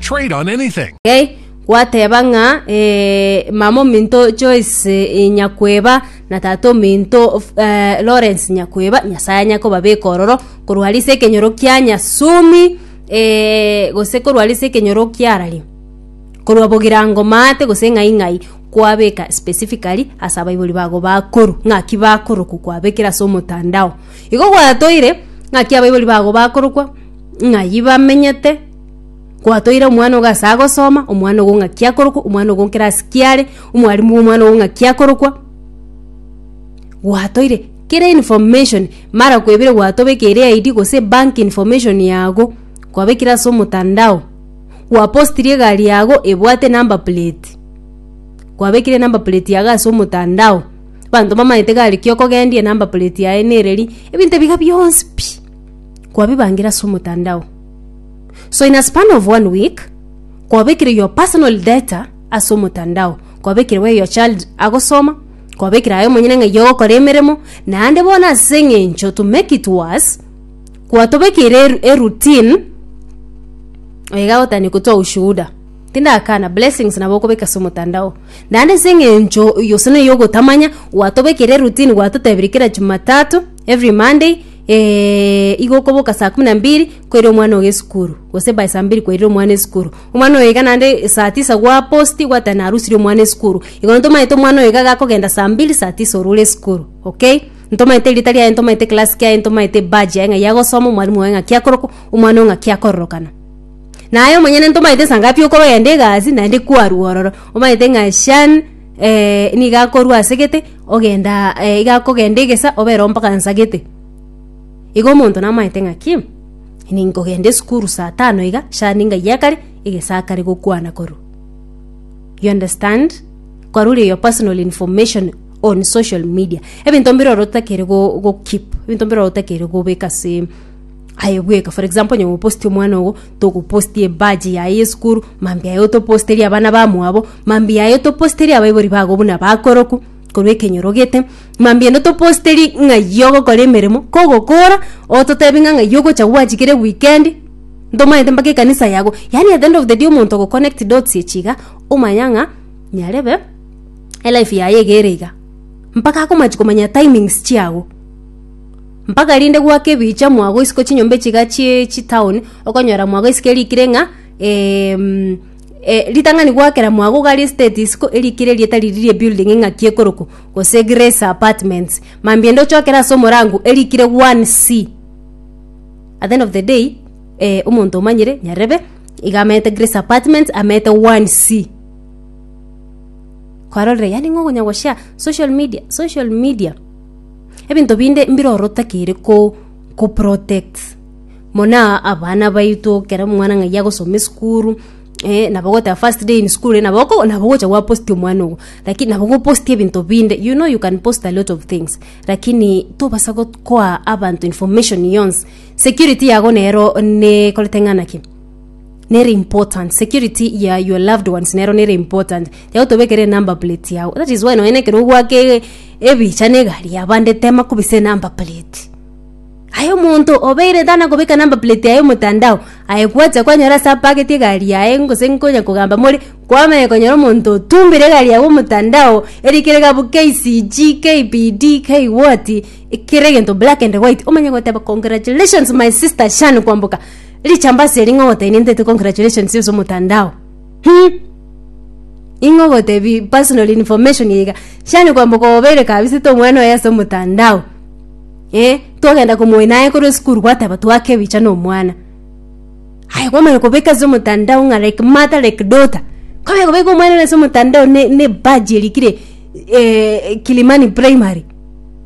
Trade on anything. Gei, gwateba ng'a, Ee, mama ominto Joyce eh, Nyakweba, na tata ominto f- eh, Lawrence Nyakweba, Nyasae anyakobabeka ororo, korwa aria ase ekenyoro kia Nyasumi, eh, gose korwa aria ase ekenyoro kiarari, korwa bogirango maate gose ng'ai ng'ai, kwabeka specifically ase abaibori bago bakoru, ng'aki bakorokwa kwabekire ase omotandao. Igo gwatoire, ng'aki abaibori bago bakorokwa, ng'ai bamenyete, Kwatoire omwana ogo ase agosoma, omwana ogo ng'aki akorokwa, omwana ogo nkere ase kiare, omwarimu omwana ogo ng'aki akorokwa, gwatoire kera information mara kwebire gwatobekeire ID gose bank information yago kwabekire ase omotandao, gwaposiri egari yago ebwate enumber plate, kwabekire enumber plate yago ase omotandao, abanto mbamaete gari ki okogendia enumber plate yaye nereri, ebinto ebiga bionsi pi, kwabibangire ase omotandao. So in a span of one week, kwabekire your personal data ase omotandao, kwabekire where your child agosoma, kwabekire aye omonyene ng'ai ogokora emeremo, naende bono ase eng'encho to make it worse, kwatobekeire eru- eroutine oiga gotania kotoa ushuhuda tindakana blessings nabo okobeka ase omotandao naende ase eng'encho oyo gose noyo ogotamanya gwatobekeire eroutine gwatotebirie kera jumatatu Every Monday eh, igo okoboka saa kumi na mbiri koira omwana ogo esukuru, gose by saa mbiri kwairire omwana esukuru. Omwana oyo iga naende saa tisa gwaposti gwateba narusirie omwana esukuru. Igo ntomanyete omwana oyo iga gakogenda saa mbiri saa tisa orure esukuru, okay? Ntomanyete erita riaye, ntomanyete class kiaye, ntomanyete badge yaye ng'a yagosoma, omwalimu oye ng'aki akorokwa, omwana oyo ng'aki akororokana. Naye omonyene ntomanyete saa ngapi okorogenda egasi naende kwarwa ororo, omanyete ng'a shan, eh, nigo akorua ase gete ogenda eh, iga akogenda egesa obere ompaka nsagete igo omonto namaete ng'aki ninkogenda esukuru saa tano iga shani ngaiya kare egesa kare gokwana korwa you understand kwarure your personal information on social media ebinto mbire ore otakere go, go keep ebinto mbire ore otakere gobeka ase aye bweka for example onye goposti omwana ogo togoposti ebaji yaye yesukuru mambia yaye otoposterie abana bamwabo mambia yaye otoposterie abaibori bago buna bakoroku korwa ekenyoro gete mambia ende otoposterie ng'ai ogokora emeremo kogokora ototebi ng'a ng'ai ogocha gwancha kera ewikendi ntomanyete mpaka ekanisa yago yaani at the end of the day omonto ogo connect dots echi iga omanya ng'a nyarebe elife yaye iga ere iga mpaka akomach komanya timings chiago. Mpaka rinde gwake ebiicha mwagoisiko chinyomba echiga chie chitown okonyora mwagoisiko erikire ng'a em, eh, ritang'ani gwakera mwagogari estate isiko erikire erieta riria rie building eng'aki ekorokwa gose grace apartments mambia inde ochokere ase omorango erikire one c at the end of the day eh, omonto omanyire nyarebe iga amanyete grace apartments amanyete one c kwarorire yaani ng'a okonya goshare social media social media. Ebinto binde mbirorota kere ko ko protect muna abana baito kero mwana ng'ai agosoma esukuru eh, nabo goteba first day in school eh, nabo oko- nabo gocha gwapostia omwana ogo lakini nabo gopostia ebinto binde you know you can post a lot of things lakini tobasa got- koa abanto information yonsi security yago nero nekorete ng'ana ki nere important security ya your loved ones nero nere important yao tobekere number plate yao that is why nonye nekero ogwaka e- ebicha na egari ya bande tema kobisa enumber plate aye omonto obeire tana kobeka number plate yaye omotandao aye gwacha kwanyora ase apageti egari yaye gose nkonya kogamba more kwamanya konyora omonto otumbire egari yaye omotandao eri kere gabu KCG, KBD, K what ekere egento black and white omanye goteba congratulations my sister Shan kwamboka Richambasi eri ng'a ogotebia nintete congratulations ase omotandao. Hum! Ing'o ogotebi personal information eye iga. Shani kwamba kobeire kabisete omwana oye ase omotandao. Eh, twagenda komoina aye korwa esukuru gwateba twake ebicha na omwana. Aye kwamanya kobeka ase omotandao ng'a like mother like daughter. Kwamanya kobeka omwana one ase omotandao ne ne badge erikire eh Kilimani primary.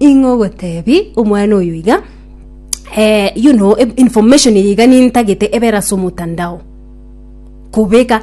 Ing'o ogotebi omwana oyo iga. eh, you know, information eye iga nintagete ebere ase omotandao kobeka